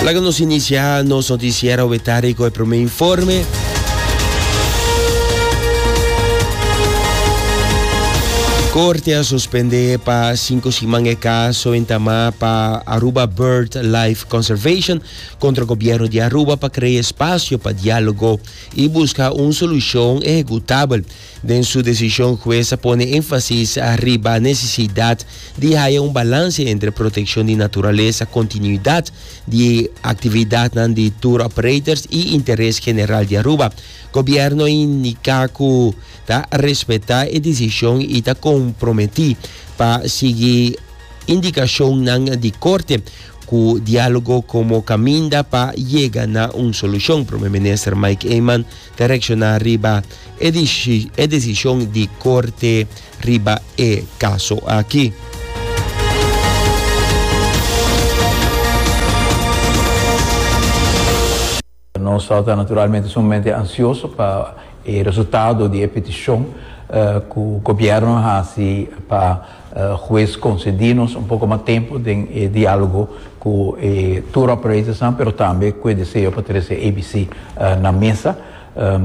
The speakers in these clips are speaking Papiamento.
Laga nos inicia nos noticiero wetari con el primer informe. Corte a suspende pa cinco siman e caso en Tamá pa Aruba Bird Life Conservation contra gobierno de Aruba pa crea espacio pa diálogo y busca un solución ejecutabel. Den su desishon hues a pone énfasis riba nesesidat di haya un balanse entre protekshon di naturalesa, kontinuidat di aktividatnan di tour operators i interes general di Aruba. Gobièrnu a indika ku ta respetá e desishon i ta komprometí pa sigui indikashonnan di korte ku diálogo komo kaminda pa yega na un solushon, Prome Minister Mike Eman ta reacciona riba e decision di Corte riba e caso aki. Nos ta naturalmente sumamente ansioso pa e resultado di e peticion cu gobierno a haci pa. Hues concedi nos un poco mas tempo den e dialogo cu e tour operators nan pero tambe cu e deseo pa trece ABC na mesa.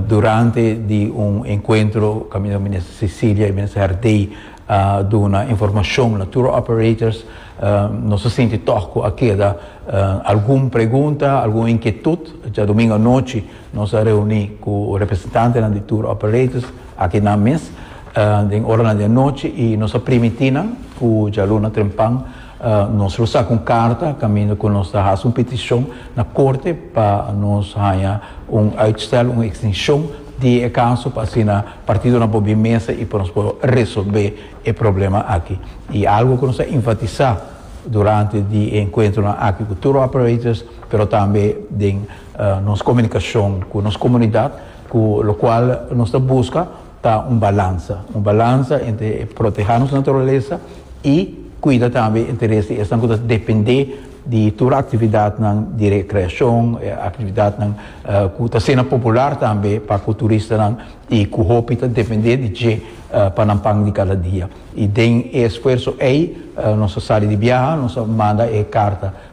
Durante di un encuentro caminda Minister Cecilia y Minister Herdey a duna informacion na tour operators nos a sinti toch cu a keda algun pregunta, algun inquietud djadomingo anochi. Nos a reuní ku representantenan di tur operators akinan mes den oranan di anochi i nos a primití nan ku djaluna trempan nos lo saka un karta kaminda ku nos ta hasi un petishon na korte pa nos haña un uitstel, un ekstenshon di e kaso pa asina partidonan por bin mesa i pa nos por resolbé e problema aki. I algu ku nos a enfatisá durante di e enkuentronan aki ku tur operators pero tambe den. Nos komunikashon ku nos komunidat, ku lokual nos ta buska ta un balansa, un balansa entre protehá nos naturalesa i kuida tambe interes di esnan ku ta dependé di tur e aktividatnan di rekreashon, e aktividatnan ku ta ser nan popular tambe pa ku turistanan i ku hopi ta dependé di dje pa nan pan di kada dia. I den e esfuerso ei nos a sali di biaha, nos a manda e karta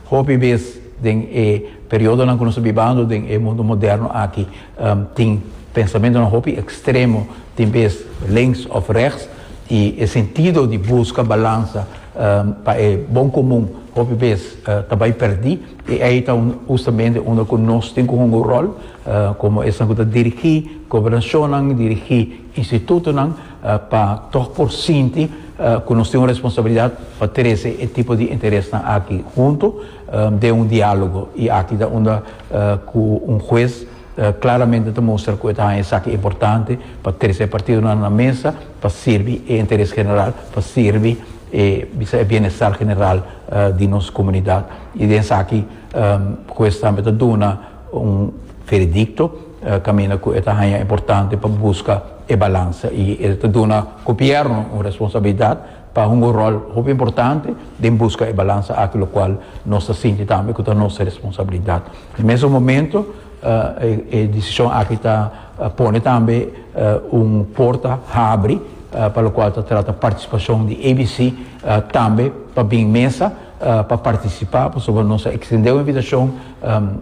Hopi bes den e periodonan ku nos ta bibando den e mundu moderno aki tin pensamentonan hopi ekstremo, tin bes links òf rèks, i e sentido di buska balansa pa e bon komun hopi bes ta bai pèrdí. I ei ta hustamente unda ku nos tin ku hunga un ròl komo esnan ku ta dirigí gobernashonnan, dirigí institutonan. pa tog por sinti cu nos tin un responsabilidad pa trece e tipo di interesnan aki hunto den un dialogo y aki ta unda cu un huez claramente ta mustra cu e ta haña esaki importante pa trece e partidonan na mesa pa sirbi e interes general, pa sirbi e bisa e bienestar general di nos comunidad y den esaki huez tambe ta duna. Un veredicto caminda cu e ta haya importante pa busca e balansa y e ta duna Gobierno un responsabilidad pa hunga un rol hopi importante den busca e balansa aki locual nos ta sinti tambe cu ta nos responsabilidad. Na mesun momento e decision aki ta pone tambe un porta habri pa locual ta trata participacion di ABC tambe pa bin mesa pa participa pasobra nos a extende un invitacion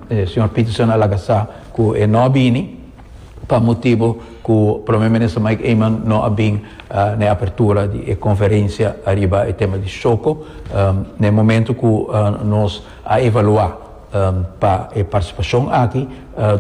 E señor Peterson a laga sa cu e no a bini pa motibo cu Prome Minister Mike Eman no a bin na e apertura di e conferencia ariba e tema di Shoco na e momento cu nos a evalua pa e participacion aki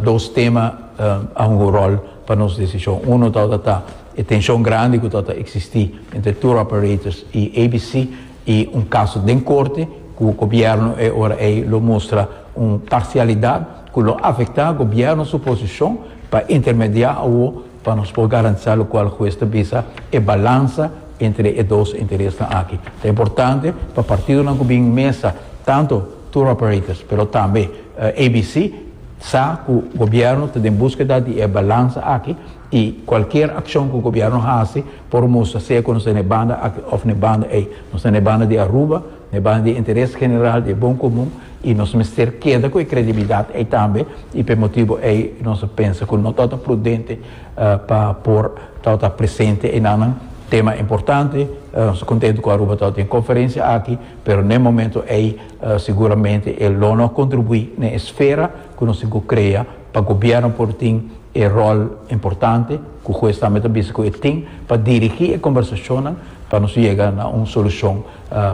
dos tema a hunga un rol pa nos decision. Uno tabata ta e tension grandi cu tabata existi entre tour operators y ABC. y un caso den corte cu gobierno e ora ey lo mustra un parcialidad cu lo afecta gobierno su posicion pa intermedia awo pa nos por garantisa locual huez ta bisa e balansa entre e dos interesnan aki. Ta importante pa partidonan cu bin mesa tanto tour operators pero tambe ABC sa cu gobierno ta den busqueda di e balansa aki. I cualkier accion cu gobierno haci por mustra sea cu nos ta na e banda aki of na e banda ey. Nos ta na e banda di Aruba, na e banda di e interes general, di e bon comun y nos mester keda cu e credibilidad ey tambe y pa e motibo ey nos a pensa cu no ta ota prudente pa por ta ota presente enanan. Tema importante, nos ta contento cu Aruba ta ota den e conferencia aki pero na e momento ey seguramente e lo no a contribui na e esfera cu nos tin cu crea. pa gobierno por tin e rol importante cu juez tambe ta bisa cu e tin pa dirigi e conversacionnan pa nos yega na un solucion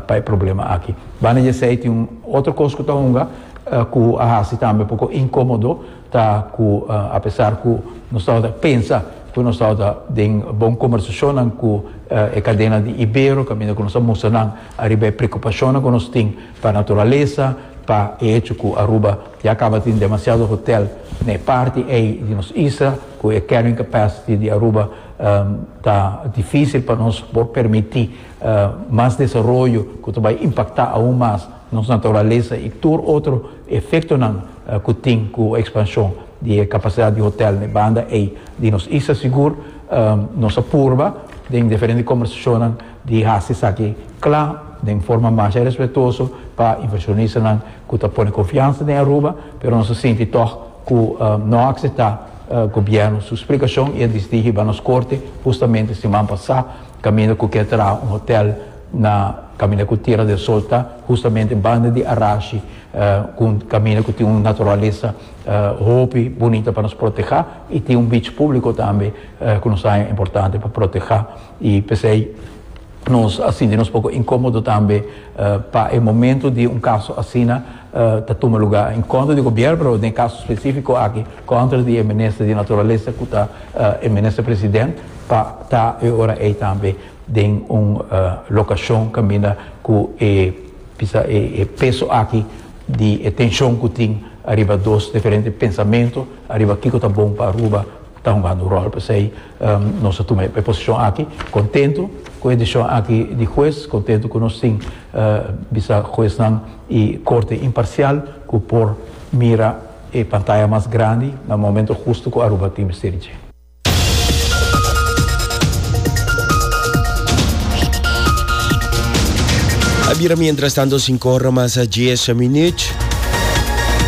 pa e problema aki. Banda di esey tin un otro cos cu ta hunga cu a haci tambe poco incomodo ta cu apesar cu nos tabata pensa cu nos tabata den bon conversacionnan cu e cadena di Ibero caminda cu nos a mustra nan ariba e preocupacionnan cu nos tin pa naturaleza, pa e hecho cu Aruba Ya caba tin demasiado hotel na e parti ey di nos isla, cu e carrying capacity di Aruba ta dificil pa nos por permiti mas desaroyo cu ta bay impacta aun mas nos naturalesa y tur otro efectonan cu tin cu expansion di e capacidad di hotel na e banda ey di nos isla. Sigur nos a purba den diferente conversacionnan. di hasi esaki cla den forma masha respetuoso pa inversionista cu ta pone confiansa den Aruba, pero nos a sinti tog cu no a acepta gobierno su splicacion y a disidi hiba nos corte hustamente siman pasa caminda cu kier traha un hotel na caminda cu Tierra del Sol ta, hustamente banda di Arashi, cu caminda cu tin un naturalesa hopi bunita pa nos proteha y tin un beach publico tambe cu nos a haña importante pa proteha. I p'esei nos a sinti nos poko inkomodo tambe pa e momento di un kaso asina ta tuma lugá en kontra di gobièrnu, pero den e kaso spesífiko aki kontra di e minister di Naturalesa ku ta e minister president pa ta e ora ei tambe den un lokashon kaminda ku e bisa e peso aki di e tenshon ku tin ariba dos diferente pensamentu ariba kiko ta bon pa Aruba ta hungando un ròl. P'esei. Nos a tuma e posishon aki kontentu ku e desishon aki di hues, kontentu ku nos tin bisa huesnan i korte imparsial ku por mira e pantaya mas grandi na momento hustu ku Aruba tin mester dje. A bira mientras tanto sinku ora mas a dies minüt.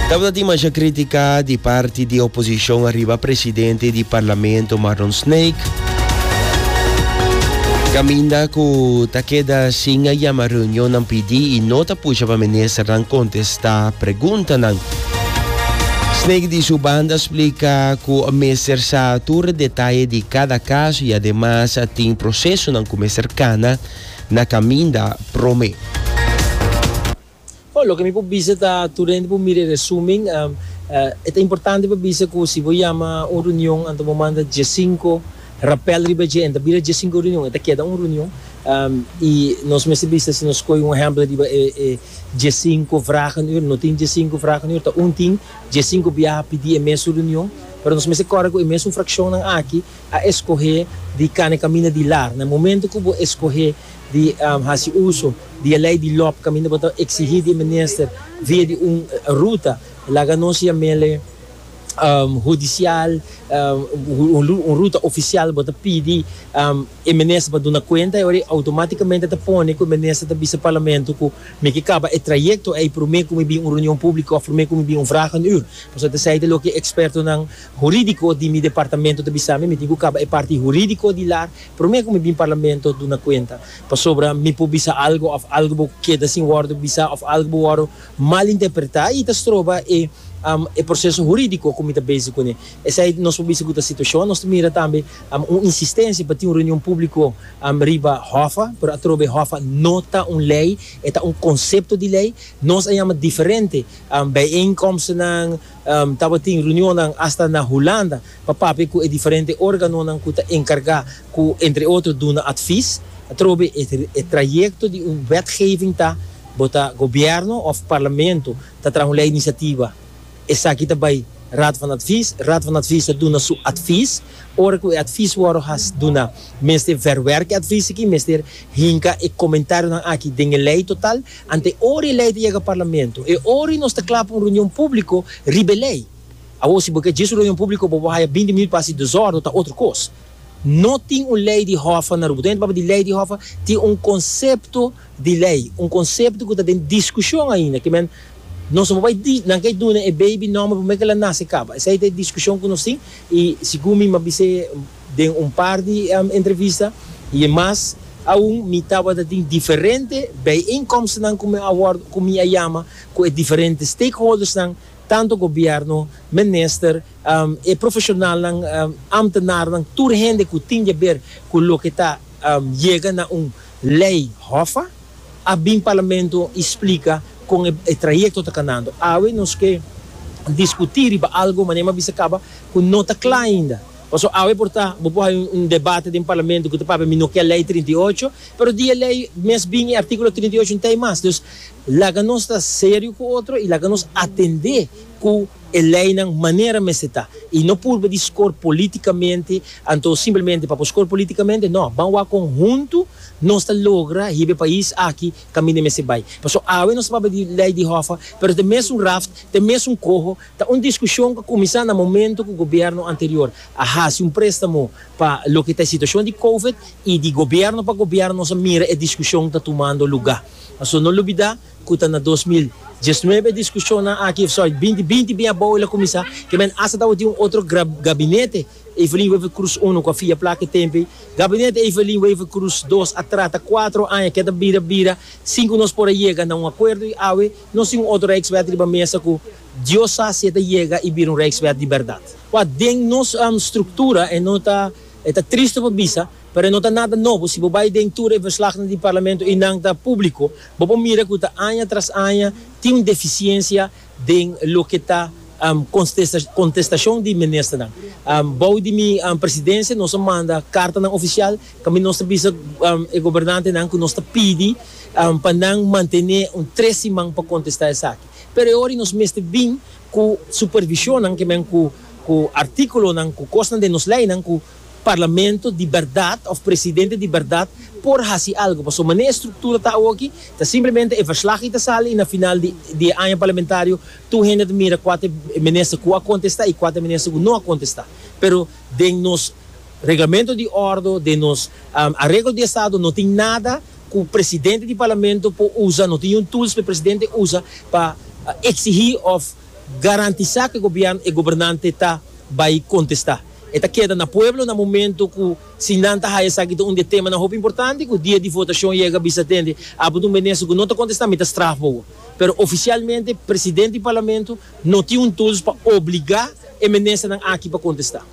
Tabata tin masha kritika di parti di oposishon ariba. Presidente di Parlamento Marlon Snake caminda cu ta keda sin a yama reunionnan PD y no ta pusha pa ministernan contesta preguntanan. Snake di su banda splica cu mester sa tur detaye di cada caso y ademas tin procesonan cu mester cana na caminda prome. Oh, loke mi por bisa ta, tur hende por mira e resumen. E ta importante pa bisa cu si bo yama un reunion, anto bo manda diescinco rapel riba dje. E no ta bira diescinco reunion, e ta keda un reunion. Y nos mester bisa si nos scoi un ehempel riba e diescinco vragen ur. No tin diescinco vragen ur, ta un tin diescinco biaha pidi e mesun reunion. Pero nos mester corda cu e mesun fraccionnan aki a escoge di cana e camina di lar. Na e momento cu bo escoge di hasi uso di e lei di lop kaminda bo ta eksigí di e minister via di un ruta laga nos yaméle hudisial, un ruta ofisial, bo ta pidi e minister pa duna kuenta, oir ei outomátikamente ta pone ku e minister ta bisa parlamento ku mi ke kaba e trayekto ei promé ku mi bin un reunion públiko òf promé ku mi bin un vraag en uur. Pasobra ta esei ta loke ekspertonan hurídiko di mi departamento ta bisa mi, mi tin ku kaba e parti hurídiko di la, Promé ku mi bin parlamento duna kuenta, pasobra mi por bisa algu òf algu bo keda sin wòrdu bisa òf algu bo wòrdu mal interpretá i ta stroba e e proseso hurídiko ku mi ta bezi kuné. Esei nos por bisa ku ta situashon. Nos ta mira tambe un insistensia pa tin un reunion públiko riba hòffa, pero atrobe hòffa no ta un lei, e ta un konsepto di lei. Nos a yama diferente bijeenkomstenan. Tabatin reunionnan asta na Hulanda pa papia ku e diferente organonan ku ta enkargá ku entre otro duna atvis atrobe e trayekto di un wetgeving ta bo ta gobièrnu òf parlamento ta traha un lei inisiativa esaki ta bai Raad van Advies, Raad van Advies ta duna su atvis, ora ku e atvis wòrdu has duna mester vèrwèrk e atvis aki, mester hinka e komentarionan aki den e lei total. Ante ora e lei ta yega Parlamento, e ora nos ta kla pa un reunion públiko riba e lei. Awor si bo ke dje su reunion públiko bo por haya binti minut pa hasi desórdo ta otro kos. No tin un lei di hòffa na Rubo. Tur hende ta papia di lei di hòffa, tin un konsepto di lei, un konsepto ku ta den diskushon ainda, ke men nos no por bai di nan ke duna e beibi nòmber promé ke el a nase kaba. Esei ta e diskushon ku nos tin i sigur mi m'a bisa e. Den un par di entrevista y e mas aun mi tabata tin diferente bijeenkomstnan cu mi a worde, cu mi a yama cu e diferente stakeholdersnan, tanto gobierno, minister, e profesionalnan, ambtenarnan, tur hende cu tin deber cu loke ta yega na un ley hofa, a bin Parlamento y splica con e trayecto ta canando. Awe nos ke discuti riba algo, mane mi a bisa caba, cu no ta cla ainda. Paso awe por ta, bo por hay un debate den Parlamento cu ta papia mi no kier Ley trinta i ocho, pero di e Ley mes bin y Articulo trinta i ocho n'ta ey mas. Dus laga nos ta serio cu otro y laga nos atende cu e Leynan manera mester ta. Y no purba di scor politicamente, anto simplemente pa por scor politicamente, no, ban wak conhunto nos ta logra hiba e pais aki caminda mester bay. Paso awe nos ta papia di Ley di Hoffa, pero ta mes un raft, ta mes un coho, Ta un diskushon ku kuminsá na momentu ku gobièrnu anterior a hasi un préstamo pa loke ta e situashon di Covid i di gobièrnu pa gobièrnu nos a mira e diskushon ta tumando lugá. Pasobra no lubidá ku ta na dos mil diesnuebe e diskushonnan aki, sòri, binti binti bin abou el a kuminsá, ke men asta tabatin un otro gabinete Evelyn Wever Croes uno ku a fia plaka e tempu ei. Gabinete Evelyn Wever Croes dos a trata kuatro aña ke ta bira bira sin ku nos por a yega na un akuerdo i awe, Nos tin un otro Rijkswet riba mesa cu Dios sa si e ta yega y bira un Rijkswet di berdad. Ua, den nos structura e no ta, e ta triste pa bisa, pero e no ta nada nobo. Si bo bay den tur e verslagnan di Parlamento y nan ta publico, bo por mira cu ta aña tras aña tin un deficiencia den loke ta contestacion di Ministernan. Bou di mi Presidencia nos a manda cartanan oficial. Tambe nos ta bisa e gobernantenan ku nos ta pidi pa nan mantené un tres siman pa kontestá esaki. Pero e ora ei nos mester bin ku supervishonnan, ke men ku artíkulonan, ku kosnan den nos leinan ku Parlamento di bèrdat òf Presidente di bèrdat por hasi algu. Pasobra mané e struktura ta awoki ta simplemente e verslag ei ta sali i na final di e aña parlamentario tur hende ta mira kua ta e minister ku a kontestá i kua ta e minister ku no a kontestá. Pero den nos. Reglamento di ordo den nos areglo di estado no tin nada cu presidente di parlamento por usa, no tin un tools pa e presidente usa pa exigi of garantisa cu e gobierno, e gobernante ta bay contesta. E ta keda na pueblo na momento cu si nan ta haya esaki ta un di e temanan hopi importante cu dia di votacion yega bisa tende abo ta un minister cu no ta contesta mi ta straf bobo. Pero oficialmente presidente di parlamento no tin un tools pa obliga e ministernan aki pa contesta.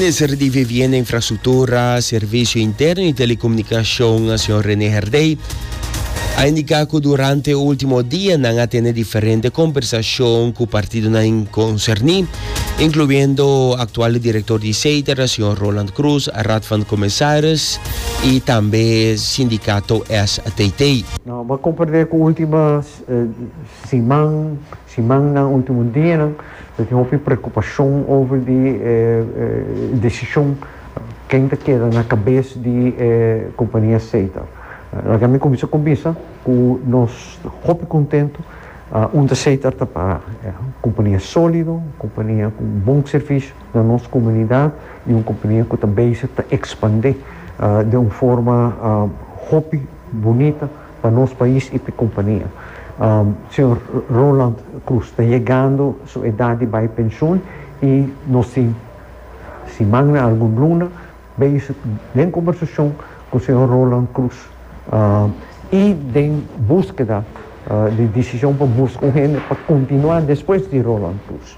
Minister di Vivienda, Infrastruktura, Servisio Interno i Telekomunikashon, señor René Herdey, a indiká ku durante último dianan a tene diferente kombersashon ku partidonan konserní incluyendo actual director di CETER, señor Roland Cruz, Raad van Commissaris y tambe sindicato STT. Nos a comprende cu ultimo siman, simannan, ultimo dianan ta tin hopi preocupacion over di e decision ken ta keda na cabes di e compania CETER. Laga mi cuminsa cumbisa cu nos hopi contento Un terceiter ta para e compania solido, un compania cu bon servicio na nos comunidad y un compania cu ta bezig ta expande den un forma hopi bunita pa nos pais y pa e compania. Señor Roland Cruz ta yegando su edad di bay pensioen y nos tin siman na algun luna. Beis den combersacion cu señor Roland Cruz y den busqueda di decision pa busca un hende pa continua despues di Roland Cruz.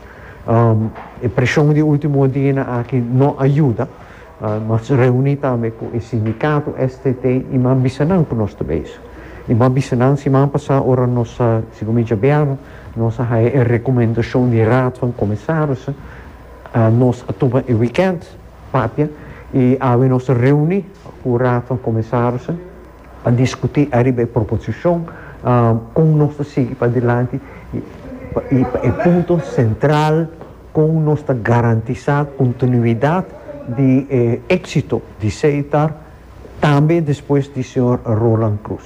E presion di ultimo dianan aki no a yuda. Nos a reuni tambe cu e sindicato STT y mi a bisa nan cu nos ta bezig. Y mi a bisa nan siman pasa ora nos a, segun mi djabianan, nos a haya e recomendacion di raad van comisarissen, Nos a tuma e wikènt papia i awe nos a reuní ku Raad van Kommisarissen pa diskutí ariba e proposishon kon nos ta sigui padilanti i pa e punto sentral kon nos ta garantisá kontinuidat di e éksito di Seitar Tambe despues di señor Roland Cruz.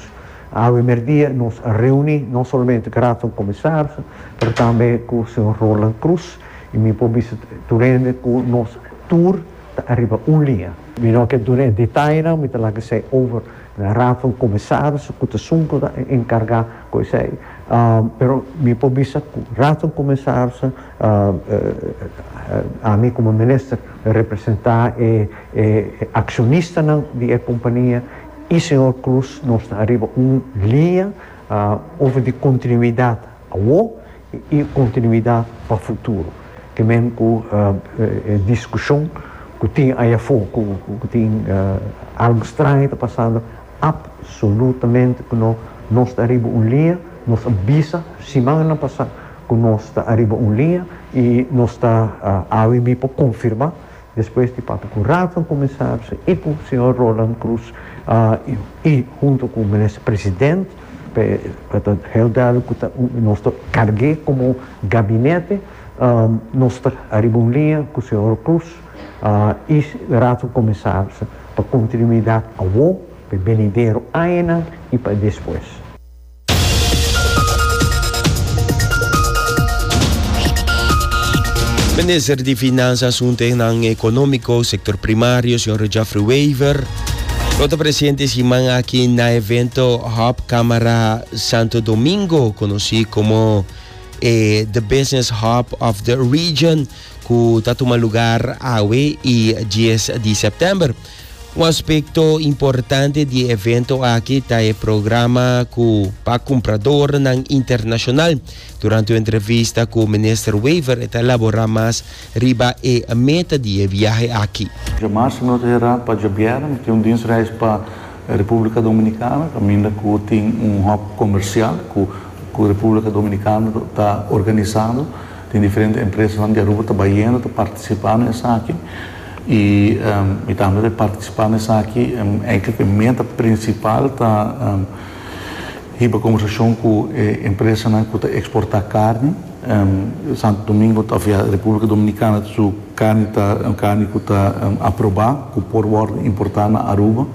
Awe merdia nos a reuni no solamente cu Raadvan Comisarissen pero tambe cu señor Roland Cruz y mi por bisa tur hende cu nos tur ta ariba un liña. Mi no ke duna e detayenan, mi ta lak esey over na Raadvan Comisarissen cu ta sunco ta encarga cu esey. Pero mi por bisa cu Raadvan Comisarissen, ami como Minister, representa e. E accionistanan di e compania y señor Cruz nos ta ariba un línea over di continuidad awo y continuidad pa futuro. Ke men cu e discusion cu tin aya afo cu tin algo straño ta pasando, absolutamente cu no, nos ta ariba un línea, nos a bisa simannan pasa cu nos ta ariba un línea y nos ta awe bipo confirma. Despues di papia ku Rafa Kumisaris i ku señor Roland Cruz i huntu ku minister president pa e ta ta heel duidelijk ku ta nos ta karg'é komo gabinete nos ta ariba un liña ku señor Cruz i Raad van Commissarissen pa kontinuidat awor pa e benidero añanan i pa e despues. Minister di Finansa, Asunte nan Economico, Sector Primario, Sr. Geoffrey Wever, lo ta presente siman aki na evento Hub Camara Santo Domingo, conoci como eh, The Business Hub of the Region, cu ta tuma lugar awe y 10 di september. Un aspekto importante di e evento aki ta e programa ku pa kumpradornan internashonal. Durante un entrevista ku Minister Wever e ta elaborá mas riba e meta di e viahe aki. Dje mars nos a herá pa dje bièrnè. Mi tin un dinsreis pa Republica Dominicana caminda cu tin un hòp comercial cu cu Republica Dominicana ta organisando. Tin diferente empresanan di Aruba ta bayendo, ta participando na esaki. y mi ta habla de participa na esaki enkele cu e meta principal ta hiba conversacion cu e empresanan cu ta exporta carni, Santo Domingo ofia Republica Dominicana su carni ta un carni cu ta aproba cu por wordo importa na Aruba.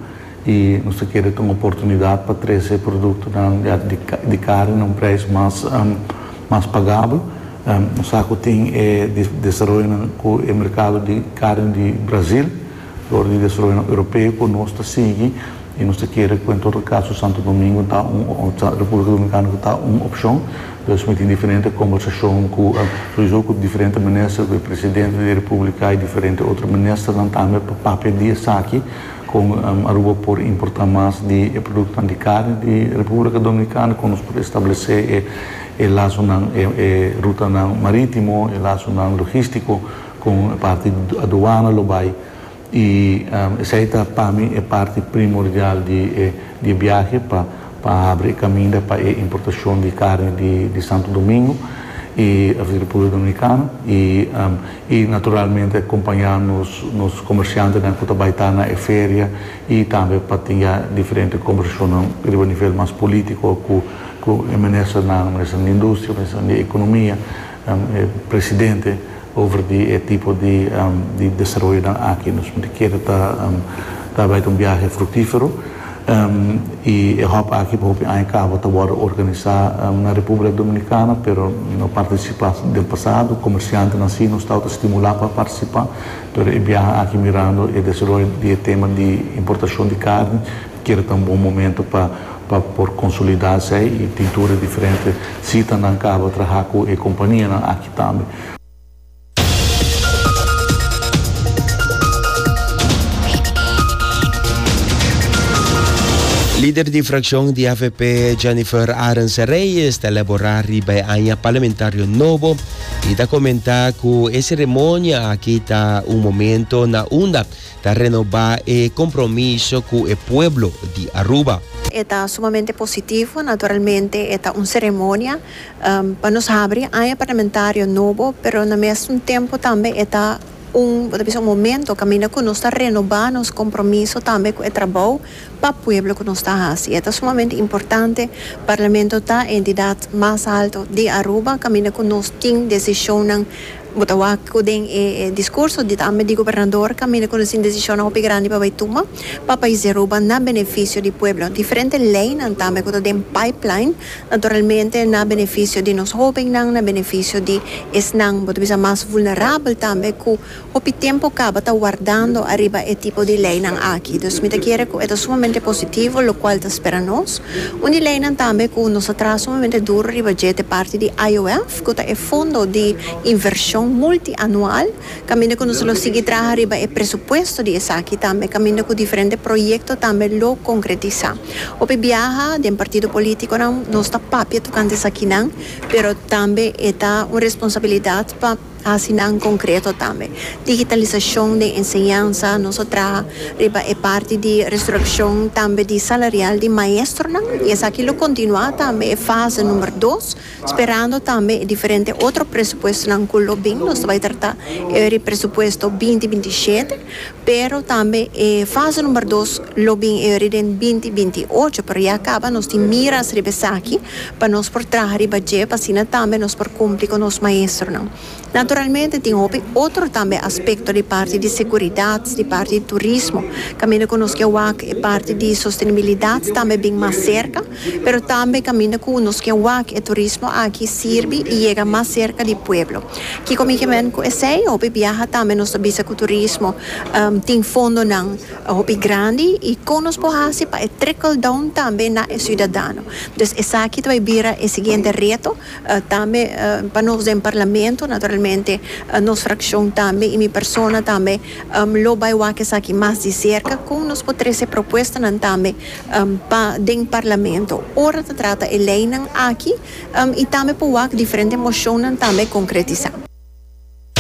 i nos ta kere ta un oportunidat pa trese produktonan ya di kare na un preis mas pagabel. Nos sa ku tin e desaroyonan ku e merkado di kare di Brasil, lor di desaroyonan europeo ku nos ta sigui i nos ta kere ku en todo kaso Santo Domingo ta un òfta Republika Dominikana ku ta un opshon. Pues mi tin diferente kombersashon ku souizo ku diferente minister, ku e presidente di e republika i diferente otro ministernan tambe pa papia di esaki. Kon Aruba por importá mas di e produktonan di karni di Republika Dominikana? Kon nos por establesé e lasonan, e rutanan marítimo, e lasonan logístiko kon e parti di aduana lo bai? I esei ta pa mi e parti primordial di e biahe pa. pa habri e kaminda pa e importashon di karni di Santo Domingo i di Republika Dominikana i naturalmente akompañá nos komershantenan ku ta bai ta na e feria i tambe pa tin ya diferente kombersashonnan riba nivel mas polítiko ku e ministernan, Ministernan di Industria, Ministernan di Ekonomia. e presidente over di e tipo di di desaroyonan aki. Nos mester keda ta ta bai ta un biahe fruktífero i e hòp aki pa hopi aña kaba ta wòrdu organisá na Repúblika Dominikana pero no partisipá den pasado. Komersiantenan sí nos tabata stimulá pa partisipá pero e biaha aki mirando e desaroyo di e tema di importashon di karni. Kere ta un bon momento pa pa por consolida esey y pintura e diferente sita nan caba traha cu e companianan aki tambe. Lider di fraccion di avp Jennifer Arendse Reyes ta elabora riba e aña parlamentario nobo y ta comenta cu e ceremonia aki ta un momento na unda Ta renobá e compromiso cu e pueblo di Aruba. E ta sumamente positivo, naturalmente e ta un ceremonia pa nos habri aña parlamentario nobo, pero na mesun tempo tambe e ta un, bo ta bisa un momento caminda cu nos ta renobá nos compromiso tambe cu e trabou pa pueblo cu nos ta haci. E ta sumamente importante, Parlamento ta e entidad mas alto di Aruba caminda cu nos tin decisionnan, Bo ta wak cu den e discurso di tambe di gobernador caminda cu nesin decisionnan hopi grandi pa bay tuma pa pais di Aruba na beneficio di pueblo. Diferente leynan tambe cu ta den pipeline, naturalmente na beneficio di nos hobennan, na beneficio di esnan bo ta bisa mas vulnerabel tambe cu hopi tempo caba ta wardando ariba e tipo di leynan aki. Dus mi ta kere cu e ta sumamente positivo locual ta spera nos. Un di leynan tambe cu nos ta traha sumamente duro riba dje te parti di IOF. Cu ta e Fondo di Inversion Multianual, caminda cu nos lo sigui traha riba e presupuesto di esaki tambe, caminda cu diferente proyecto tambe lo concretisa. Hopi biaha den partido politiconan nos ta papia tocante esakinan, pero tambe e ta un responsabilidad pa haci nan concreto tambe. Digitalisacion den enseñansa, nos a traha riba e parti di resurreccion tambe di salarial di maestronan y esaki lo continua tambe e fase number dos, Sperando tambe e diferente otro presupuestonan cu lo bin nos ta bay trata e ori presupuesto binti binti shete, pero tambe e fase number dos lo bin e ori den binti binti ocho, pero ya caba nos tin miras riba esaki pa nos por traha riba dje pa asina tambe nos por cumpli cu nos maestronan. Naturalmente tin hopi otro tambe aspecto di parti di seguridad, di parti di turismo, caminda cu nos ke wak e parti di sostenibilidad tambe bin mas cerca, pero tambe caminda cu nos ke wak e turismo aki sirbi y yega mas cerca di pueblo. Kico mi ke men cu esey? Hopi biaha tambe nos ta bisa cu turismo tin fondonan hopi grandi y con nos por haci pa e trickle down tambe na e ciudadano. Dus esaki ta bay bira e siguiente reto. Tambe pa nos den Parlamento, naturalmente nos frakshon tambe i mi persona tambe lo bai wak esaki mas di serka kon nos por trese propuestanan tambe pa den Parlamento ora ta trata e leinan aki i tambe por wak diferente moshonnan tambe konkretisá.